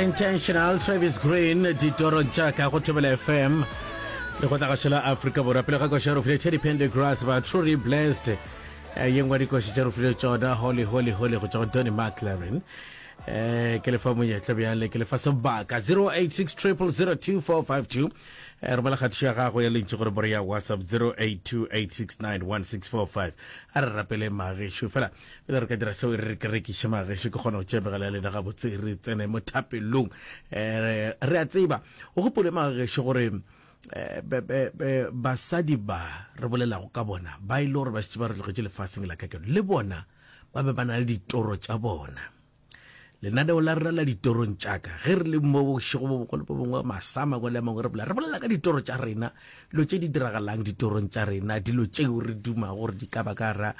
intentional travis green ditorong tša ka go thobela fm le go tlaga šela afrika borwa pele ga koša ya rofile teddy pende grass ba truly blessed eh, ye ngwe dikoši tša rofile tsona holy holy holy go tšwa go donny mclaren eh ke lefa monyetla bjale ke lefa sebaka 086 002452 eh romela kgatišo ya gago ya lentši gore bore ya whatsapp 0828691645 a re rapele magešo fela pele re ka dira seo re ke rekiše mageše ke kgona go tšebegela le na gabotse re tsene mo thapelong eh, re a tseba o gopole mageše gore eh, basadi ba re bolelago ka bona ba ile e gore ba šitse ba re tlogetše lefaseng la kakeno le bona ba be ba na le ditoro tša bona Lenaneo la rena la ditorong tšaka, ge re le mo bošego bo bogolo bo bongwe masama kwa le a mangwe re bolela, re bolela ka ditoro tša rena, dilo tše di diragalang ditorong tša rena, dilo tšeo re duma gore di ka ba ka ra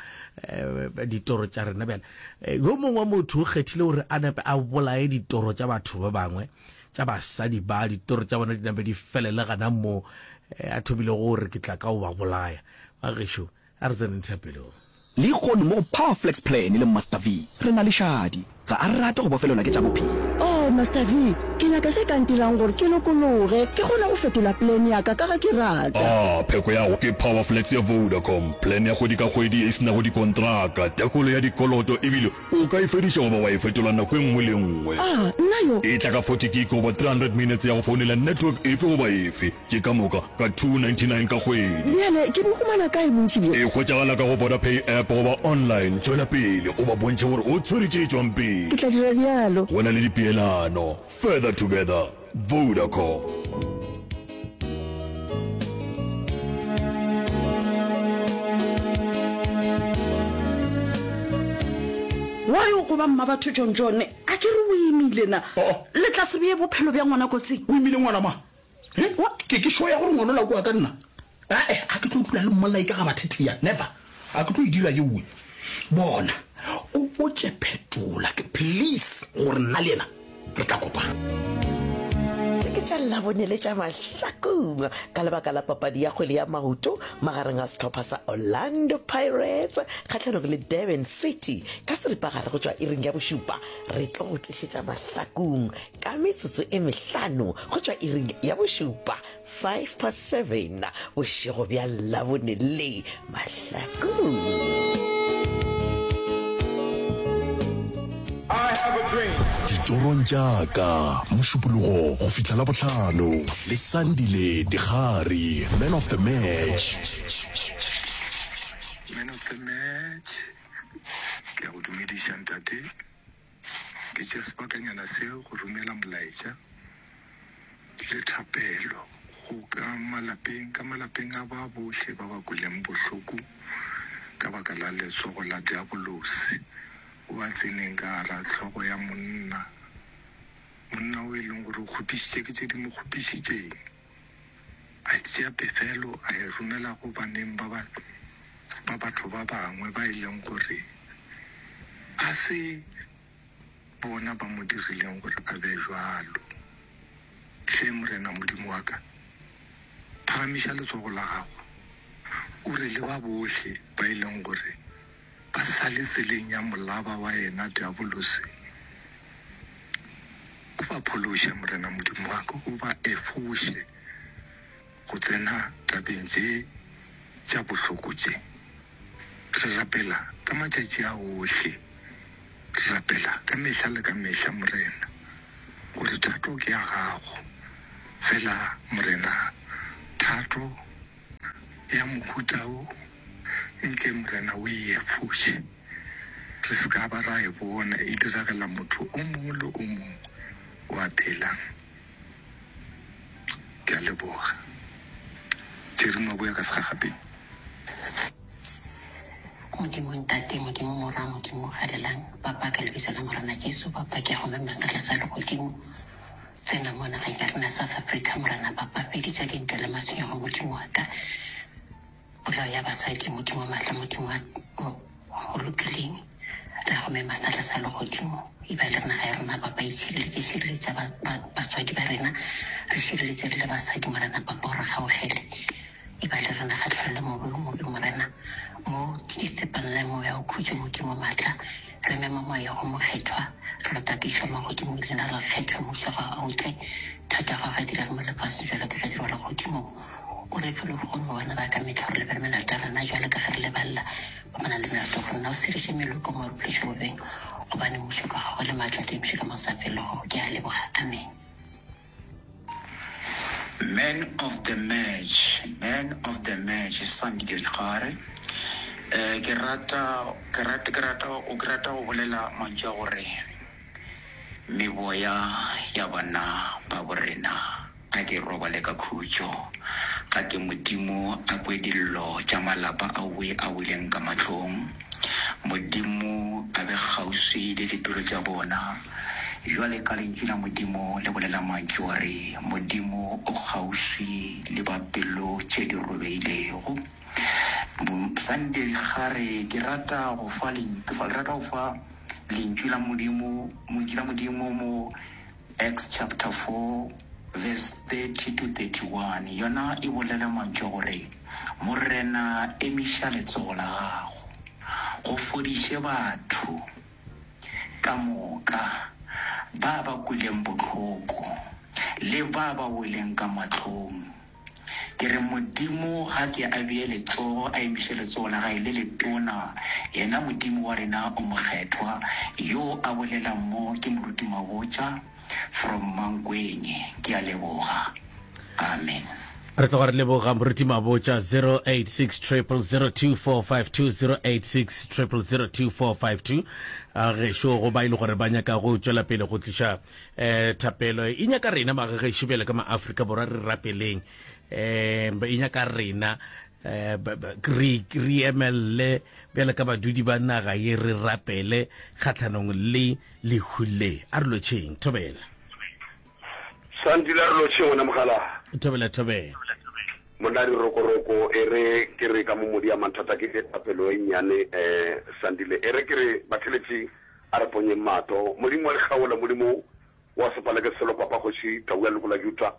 eh, ditoro tša rena. Bjale eh, yo mongwe wa motho o kgethile gore a nape a bolaye ditoro tša batho ba bangwe tša basadi ba ditoro tša bona di nape di felele gana moo eh, a thomile gore ke tla ka o ba bolaya bagešo A re tseneng thapelong. Lehono mo go Power Flex Plan le Master V, re na le šadi. Ga a rate go bofelelwa ke tša bophelo. Oh, Master V, ke nyaka se ka ntirang gore ke lokologe, ke kgone go fetola plan ya ka, ka ge ke rata. Ah, pheko ya go ke Power Flex ya Vodacom, plan ya kgwedi ka kgwedi e se nago dikontraka, tekolo ya dikoloto e bile o ka e fediša goba wa e fetola nako e nngwe le e nngwe. Ah, nna yo! E tla ka forty gig goba three hundred minutes ya go founela network efe goba efe. Ke ka moka ka 299 ka kgwedi. Bjale ke bo humana kae bontši bjo? E hwetšagala ka go Vodapay app goba online. Tšwela pele o ba bontšhe gore o tshwere tše tšwang pele. Ke tla dira bjalo. Go na le dipeelano. Further together. Vodacom. Wa re o ko ba mmabatho John John, a ke re o imile na? Le tla se beye bophelo bja ngwana kotsing? O imile ngwana mang? He, wa, ke, ke sure ya gore ngwanola o kwa ka nna. Ae, ga ke tlo dula le mmolai ka ga bathetlia, never. Ga ke tlo e dira yeoe. Bona, o botše Phetola, ke, please, gore nna le yena re tla kopana. Tše ke tša Labone le tša Mahlakong ka lebaka la papadi ya kgwele ya maoto magareng a sehlopha sa Orlando Pirates kgahlanong le Durban City ka seripagare go tšwa iring ya bošupa. Re tlo go tlišetša Mahlakong Ka metsotso e mehlano go tšwa iring ya bošupa, 5 past 7, bošego bja Labone le mahlakong. ditorong tša ka mošupologo go fihla la bohlano le sandile dikgari man of the match Man of the match, ke a go dumediša ntate. Ke tšea sebakanyana se go romela molaetša le thapelo go ka malapeng ka malapeng a ba bohle ba ba kweleng bohloko ka baka la letsogo la diabolosi o ba tseneng ka gara hlogo ya monna, monna o e leng gore o kgopišitše ke tše di mo kgopišitšeng. a tšea pefelo a e romela go baneng ba ba ba batho ba bangwe ba e leng gore ga se bona ba mo dirileng gore a be jalo. Hle Morena Modimo wa ka, phagamiša letsogo la gago o re le ba bohle ba e leng gore A sa le tseleng ya molaba wa yena diabolose, o ba phološe, Morena Modimo wa ka, o ba efoše go tsena tabeng tše tša bohloko tše. Re rapela ka matšatši a ohle, re rapela ka mehla le ka mehla, Morena, gore thato ke ya gago. Fela, Morena, thato ya mohuta wo ntle, Morena, o e efoše re se ka ba ra e bona e diragela motho o mongwe le o mongwe o a phelang. Ke a leboga, Jerry Maboya ka segagabing. Modimo Ntate, Modimo Morwa, Modimo galelang, Papa, ka Lebiso la Morena Jesu, Papa, ke a go mema sekgahla sa Legodimo. Tsena mo nageng ya rena South Africa, Morena, Papa, feditša dintwa le matshwenyego, Modimo wa ka. Polao ya basadi, Modimo wa maatla, Modimo wa o o lokileng, re a go mema sekgahla sa Legodimo. E ba le re naga ya rena, Papa, itšhireletše, šireletša ba, ba, batswadi ba rena, re šireletše le basadi, Morena, Papa, o re kgaogele. E ba le rena kgahlano le mobe wo mobe, Morena. Mo ke di stepanelang Moya wa Khutšo, mo ke mo matla. Re mema Moya go Mokgethwa. Re lo tapišwa mo Godimong, Leina la Kgethwa, Mmušo wa Gagwe a o tle. Thato ya Gagwe e direga mo lefaseng bjalo ka ge e direlwa Godimong. O re fe logo gomme wa leba ka mehla gore lebele melato ya rena bjalo ka ge re lebalela ba ba nang le melato go rena. O sereše meloko mo re phološo bobeng, gobane Mmušo ke wa Gago, le matla le eupša ka mo sa felego. Ke a leboga. Amen. Man of the match, man of the match Sandi de Rixare. Eh, ke rata, ke rata, ke rata, o ke rata go bolela mantšu a gore meboya ya bana ba bo rena a ke robale ka khutšo, ga ke Modimo a kwe dillo tša malapa a we a weleng ka mahlong. Modimo a be kgauswi le dipelo tša bona. Bjale ka Lentšu la Modimo le bolela mantšu a re, Modimo o kgauswi le ba pelo tše di robegilego. Mosadi ga re, Ke rata go fa, ke rata go fa Lentšu la Modimo, Lentšu la Modimo mo, Acts chapter 4 verse 30 to 31, yona e bolela mantšu a go re, Morena, emiša letsogo la gago, go fodiše batho ka moka, ba ba kwileng bohloko le ba ba weleng ka mahlong. Ke re, Modimo ga ke a bee letsogo, a emiše letsogo la Gae le letona, Yena Modimo wa rena o Mokgethwa, Yoo a bolelang mo, ke Moruti Mabotja, from Mankweng. Ke a leboga. Amen. Re tloga re leboga Moruti Mabotja, 0860002452, 0860002452. A gešo go ba e le gore ba nyaka go tšwela pele go tliša. eh thapelo e nyaka rena ba ge šo bjale ka ma Africa borwa re rapeleng eh ba e nyaka rena eh re re emelle bjale ka badudi ba naga ye re rapele khatlhanong le lehule a re lotšheng thobela santile a re lotšheng ona mogala thobela thobela monna di rokoroko e re ke re ka mo modi ya mathata ke thapelo e nnyane eh santile e re ke re batheletši A re ponyeng mato. Modimo wa dikgaolo, Modimo wa sepaleke selo, Papa, Kgoši, Tau ya leloko la Juta,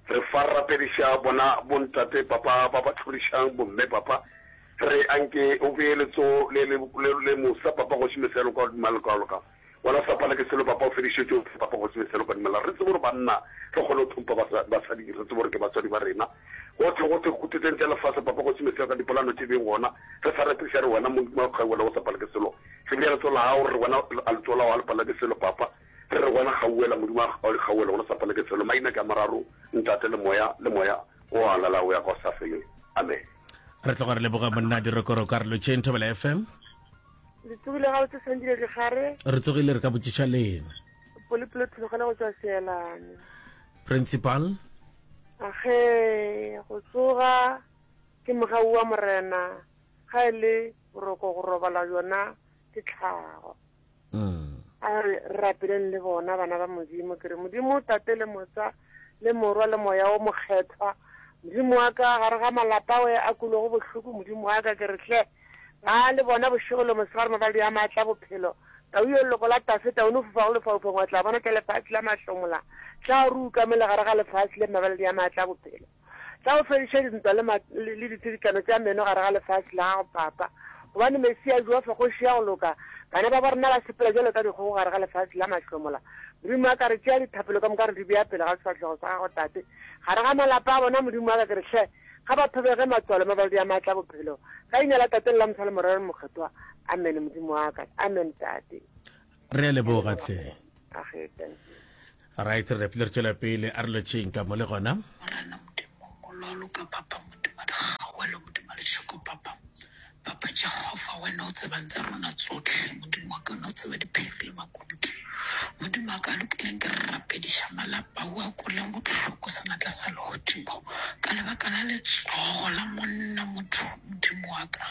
re fa re rapediša bona bontate, Papa, ba ba tlhorišang, bomme, Papa. Re a nke O bee letsogo le, le, le, le mosa, Papa, Kgoši, mehla ya loka godimo ga lekwalo ka. Wena sepaleke selo, Papa, o fedišetše o fe, Papa, Kgoši, mehla ya loka godimo ga la. Re tsebe gore banna re kgona go hlompha basa, basadi, re tsebe gore ke batswadi ba rena. Gohle, gohle khuteteng tša lefase, Papa, Kgoši, mehla ya loka dipolano tše beng gona, re sa repiša re wena, Modimo wa kgaolo wa sepaleke selo. Re bea letsoho la gago, re re bona, a letsoho la gago a le palelwa ke selo, Papa. Re re bona kgauwela, Modimo wa gago a di kgauwela, gona sa palelwe ke selo. Maina ke a mararo, Ntate, le Moya, le Moya wo wa Lala wo ya ka o sa feleng. Amen. Re tloga re leboga monna Dirokoro Karolotšeng, Thobela FM. Le tsogile gabotse Sandile Digare. Re tsogile re ka botšiša lena. Polipolo thulogana go tswa seelane. Principal. Age go tsoga ke mogau wa morena ga e le Boroko go robala bjona ke tlhago. A re rapeleng le bona bana ba Modimo ke re Modimo Tate le Motsa le Morwa le Moya wo Mokgethwa Modimo wa ka gare ga malapa we a kulego bohloko Modimo wa ka ke re hle ba le bona bošego le mosegare mabaldi a maatla bophelo tau yo leloko la tase tau no fofa go lefaufaung wa tla bona tla lefatshe la mahlomola tla ruka mele gare ga lefatshe le mabaldi a maatla bophelo Tla o fediša dintwa le ma, le, le ditsidikano tša meno gare ga lefase la gago, Papa, gobane Mesia Jofa, Kgoši ya go loka, bana ba borena ba sepela bjalo ka dikgogo gare ga lefase la mahlomola. Modimo wa ka, re tšea dithapelo ka moka re di bea pele ga sefahlego sa Gago, Tate, gare ga malapa a bona, Modimo wa ka, ke re, Hle, ga ba thobege matswalo, mabalodi a maatla a bophelo, ka Leina la Tate le la Mosa le Morero le Mokgethwa. Amene, Modimo wa ka. Amene, Tate. re a leboga tle right re pele re tšwela pele a re lotšheng ka mo le gona morena modimo o lwalo ka papa modimo dikgawelo modimo lešoko papa papa jehova wena o tsebang tsa rona tsotlhe modimo wa ka o ne o tseba diphiri le makutu modimo wa ka a lokileng ke re rapediša malapa o a koleng botlhoko senatla sa legodimo ka lebaka la letsogo la monna motho modimo wa ka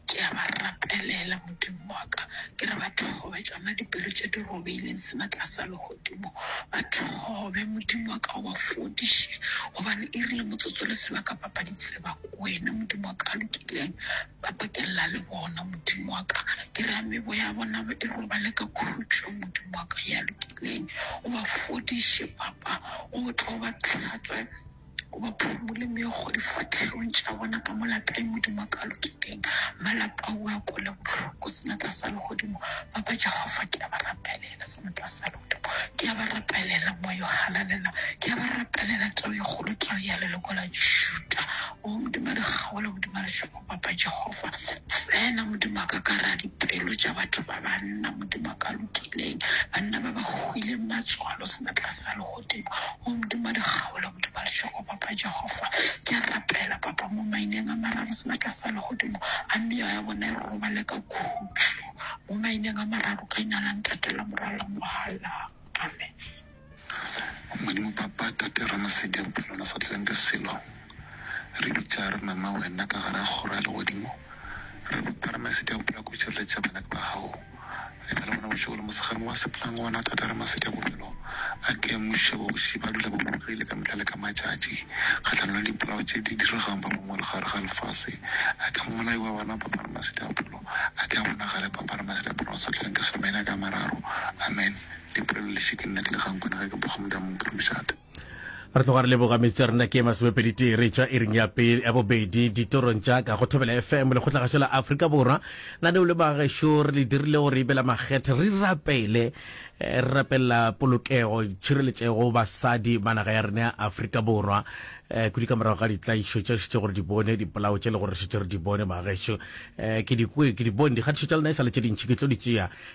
Ke a ba rapelela, Modimo wa ka, ke re ba thobe tšona dipere tše di robehileng sena tlasa legodimo. Ba thobe, Modimo wa ka, o ba fodiše, gobane e rile motsotso le sebaka ba ba di tseba ko wena, Modimo wa ka a lokileng. Ba pakella le bona, Modimo wa ka, ke re a meboya ya bona e robale ka khutšo, Modimo wa ka, ya lokileng. O ba fodiše, Papa, o tlo ba hlatswe. O ba phumole meokgo difahlehong tša bona ka mola tae, Modimo a ka lokileng. Malapa ao a kwele bohloko senatla sa legodimo. Ba ba Jehofa, ke a ba rapelela senatla sa legodimo. Ke a ba rapelela moya o halalelang. Ke a ba rapelela tau e kgolo, tau ya leloko la Juda. O Modimo a di kgaole, Modimo a lešopo, Papa Jehofa, tsena Modimo wa ka ka gare ga dipelo tša batho ba banna, Modimo a ka lokileng, banna ba ba hwileng matswalo senatla sa legodimo. Modimo, o modimo wa lekgabo le modimo wa lešego, Papa Jehofa. Ke a rapela, Papa, mo maineng a mararo, seatla sa legodimo, a meya ya bona e robale ka khutšo, mo maineng a mararo, ka Leina la Ntate, la Morwa, la Moga, la. Amen. Modimo, Papa, Tate, Ramasedi ya bophelo, lona swatleleng ka selo, re bitša, re mema Wena ka gare ga kgoro ya legodimo, re lopa, Ramasedi ya bophelo, ka go tšireletša bana ba Gago. e ka le gona bošego le mosegare wa seplang gona thata re masedi a bobelo a ke muše bogoši ba dula ba bogile ka mehla le ka matšatši kgahlanong le dipolao tše di diregang ba bangwe le gare ga lefase a ke mmolai wa bana papa re masedi a pholo a ke a bonagale papa re masedi a pholo a sa tlhoeng ke selomene a ka mararo amen dipolelo le šeke nna ke le kgang kwana ge ke boga modamong ke re mošate re tloga re leboga metsi a rena ke masomepedi tee re tšwa iring ya pele ya bobedi ditorong tša ka go thobela fm le kgotlagašo la afrika borwa na ne o le bagaešo re le dirile gore ebe la makgethe re rapele eh, re rapelela polokego tšhireletšego basadi ba naga ya rena ya afrika borwa um kudi ka morago ga ditlaišo tša šitše gore di bone dipolao tše le gore šitše re di bone bagaešo um eh, ke dikwe ke di bone dikgatišo tša lena e sa le tše dintšhi ke tlo di tšea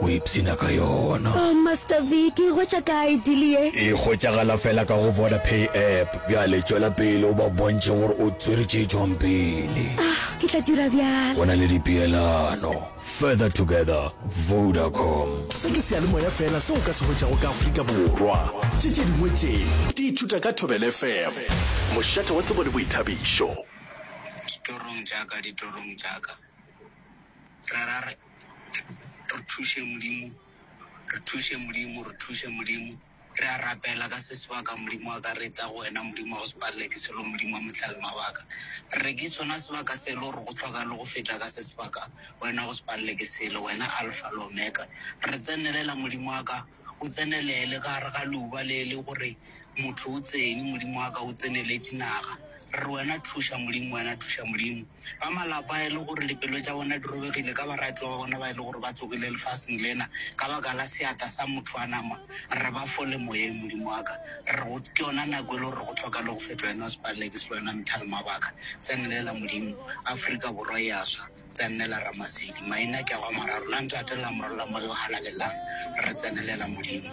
O ipshina ka yona. Oh Master V, ke e hwetša kae deal ye? E hwetšagala fela ka go Vodapay app. Bjale tšwela pele o ba bontšhe gore o tswere tše tšwang pele. Ah, ke tla dira bjalo. Go na le dipeelano. Further together, Vodacom. Se ke seyalemoya feela seo o ka se hwetšago ka Afrika Borwa. Tše tše dingwe tše, di ithuta ka Thobela FM. Mošate wa tsebo le boithabišo. Ditorong tša ka, ditorong tša ka, re ra re. Re thuše Modimo, re thuše Modimo, re thuše Modimo. Re a rapela ka se sebaka, Modimo wa ka, re tla go Wena, Modimo wa go se palelwe ke selo, Modimo wa Mohlalemabaka. Re re ke sona sebaka se e le gore go hloka le go feta ka se sebaka, Wena go se palelwe ke selo, Wena Alfa le Omega. Re tsenelela, Modimo wa ka. o tsenelele ka gare ga leuba le le gore motho o tsene Modimo wa ka o tseneletše naga re re wena thuša Modimo wena thuša Modimo ba malapa e le gore dipelo tša bona di robegile ka baratiwa ba bona ba e le gore ba tsogile lefaseng lena ka baka la seata sa motho wa nama re re ba fole moyeng Modimo wa ka re go ke yona nako e le gore go tlhoka le go fetwa wena o sepaleleke se le wena methale mabaka tsenelela Modimo Afrika Borwa e a swa Tsenela Ramasedi. Maina ke a gwa mararo, la ntate, la morwa, la moya o halalelang, re tsenelela Modimo.